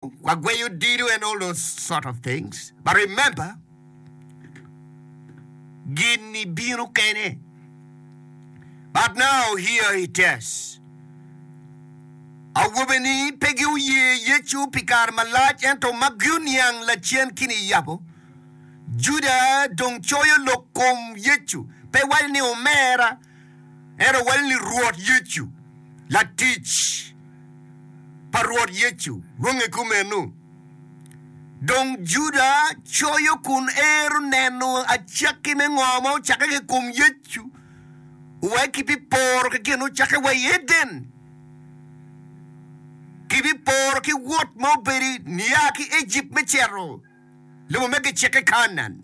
Wagweyo dido and all those sort of things but remember gini bino kene but now here it is awobe ni pe gi oye Yecu pi kare malac ento ma gi oniang lacen kini yabo Juda dong coyo lok kom Yecu pe waco ni omera Ento wal ni Rwot Yecu, latic pa Rwot Yecu, lwonge kumeno. Dong Juda coyo kun ero neno acakki me ngo ma ocakke ki i kom Yecu, wek kibiporo ki gin ocakke wa i Eden, kibiporo ki wot ma obedo nia ki Ejipt me cito. lobo ma gicikke Kanaan.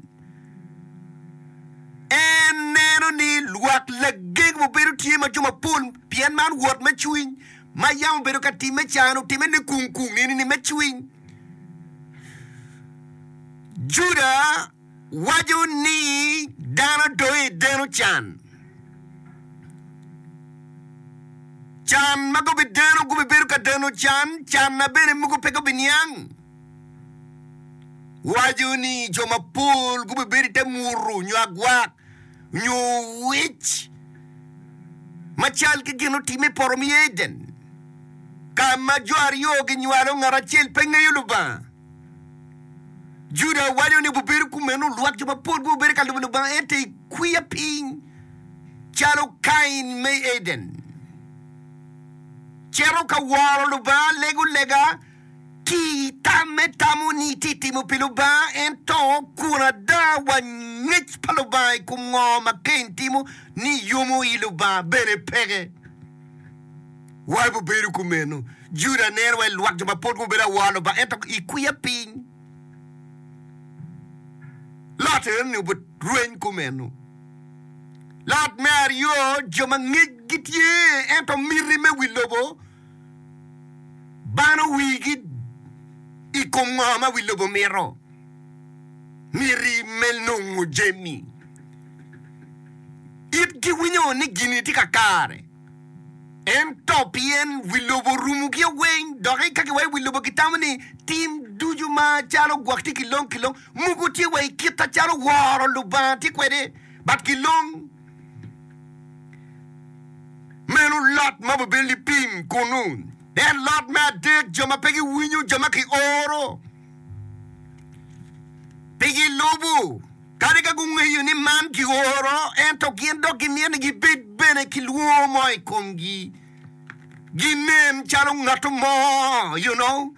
En neno ni lwak lageng mubedo tye ma jo mapol pien man wot me cwiny ma yam obedo ka timme can, otimme ni kung kung nini ni me cwiny. Juda waco ni dano doyo i deno can. Can ma gubi deno gubi bedo ka deno can, can na bene mugu pe gubi niang. waco ni jo mapol gubibedo i te muru nyo agwak nyo wec macal ki gin otime i poto mi Eden ka ma jo aryo ginywalo ngat acel pe ngeyo Lubanga. Juda waco ni obibedo kumeno lwak jo mapol gubibedo ka lubo Lubanga ento i kwiya piny calo Kain me Eden cito ka woro Lubanga lego lega Ki i tamme tamo ni itye timo pi Lubanga, ento kun ada wa ngec pa Lubanga i kom ngo ma Cain timo ni yomo i Lubanga? Bene peke. Wai bu bedo kumeno. Juda neno wai lwak jo ma pud gubedo awor Lubanga ento i kwiya piny. Lot eno ni obu rweny kumeno. Lot me aryo jo ma ngec gitye ento miti me wi lobo bano wigi i kom ngo ma wi lobo mito, miti me nongo jami. Itgi winyo ni gini tye kakare, ento pien wi lobo rumo ki owiny, dok i kaki wa i wi lobo kitamo ni tim ducu ma calo gwok tye kilong kilong, mogo tye wa i kit acalo woro Lubanga tye kwede, but kilong. Meno lot ma obedo libim kunnu. En lot me adek, jo ma pe giwinyo, jo ma kioro pe gilubo, kadi ka gungeyo ni man kioro, ento gin dok gimito ni gibed bene ki lwongo mo i komgi, ginen calo ngat mo, you know,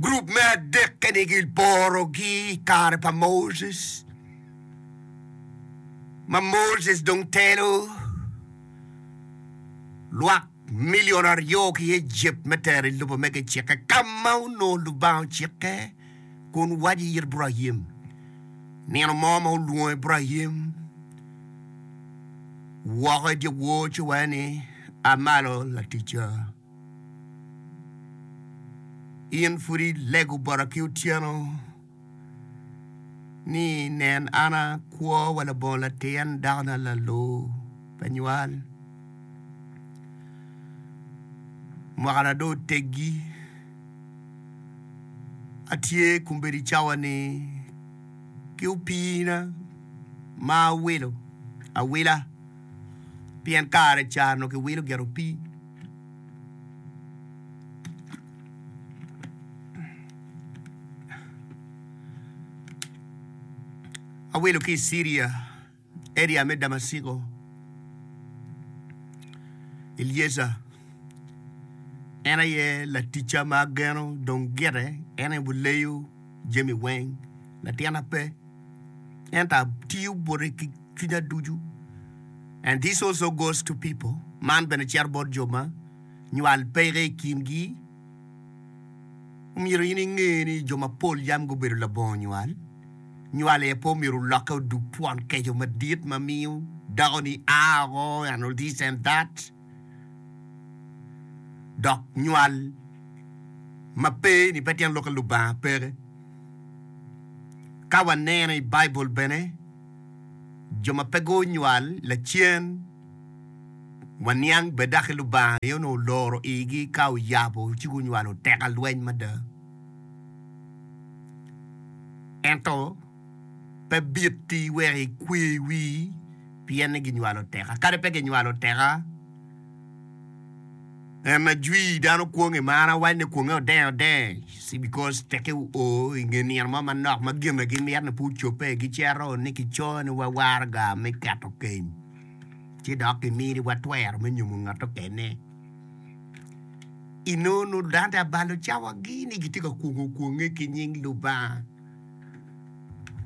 Gurup me adek-ni giporogi i kare pa Moses, ma Moses dong telo lwak milion aryo ki Ejipt me tero i lobo me gicikke, ka ma onongo Lubanga ocikke. kun waco it Ibrahim. Nino mo ma olwongo Ibrahim woko i dyewor ci wacce ni, A malo laticca, in pud ilego bota ki otyeno ni, 'Nen, an a kwo wa labongo latin dakona lalo pa nywal, mwakana dong oteggi. atye kombeddi cawa-ni ki opiina ma awilo awila pien kare ca onongo kiwilo gire opii. Awilo ki i Ciria. eria me Damaciko, Eliezer en aye laticca ma ageno dong gire, en aye buleyo jami weng, latina pe, ento atiyo bote ki cwinya ducu, and this also goes to people, man bene cito bot jo ma nywal peke i kingi. Omyero in inge ni jo mapol yam gubedo labongo nywal. Nywal aye pe omyero olokke odug twon keco madit ma miyo dakoni a oko and this and that. Dok nywal ma pe ni pe tyen lokke Lubanga peke. Ka waneno i Baibul bene, jo ma pe gunywal lacen, Waniang bene daki Lubanga aye onongo oloro igi ka oyabo ci gunywalo teka lweny mada. Ento pe bitti wek ikwe wii pien ni ginywalo teka. Kadi pe ginywalo teka, en ajwi dano kwong i mar awac ni kwonge odeny odeny because teki oo i nge nino mo manok ma gine gimito ni pe ocobbe gicito ni kico ni wa waraga me keto keny. ci dok kiminiwa twero me nyomo ngat okene. I nono dante abalo cawagi ni gitye ka kwongo kwonge ki nying Lubanga.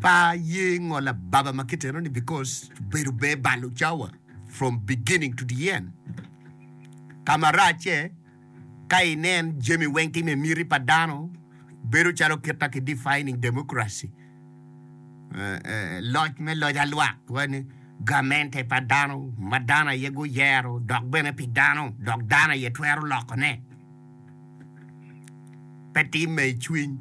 Pa ye ngolo ababa ma kiteno ni because bedo be balo cawa from beginning to the end. Ka marac-ce, Ka inen jami weng time i miti pa dano, bedo calo kit ma ki defining democracy, loc me loc alwak, wani, gamente pa dano, ma dano aye guyero, dok bene pi dano, dok dano aye twero loko ne. Pe timme i cwiny.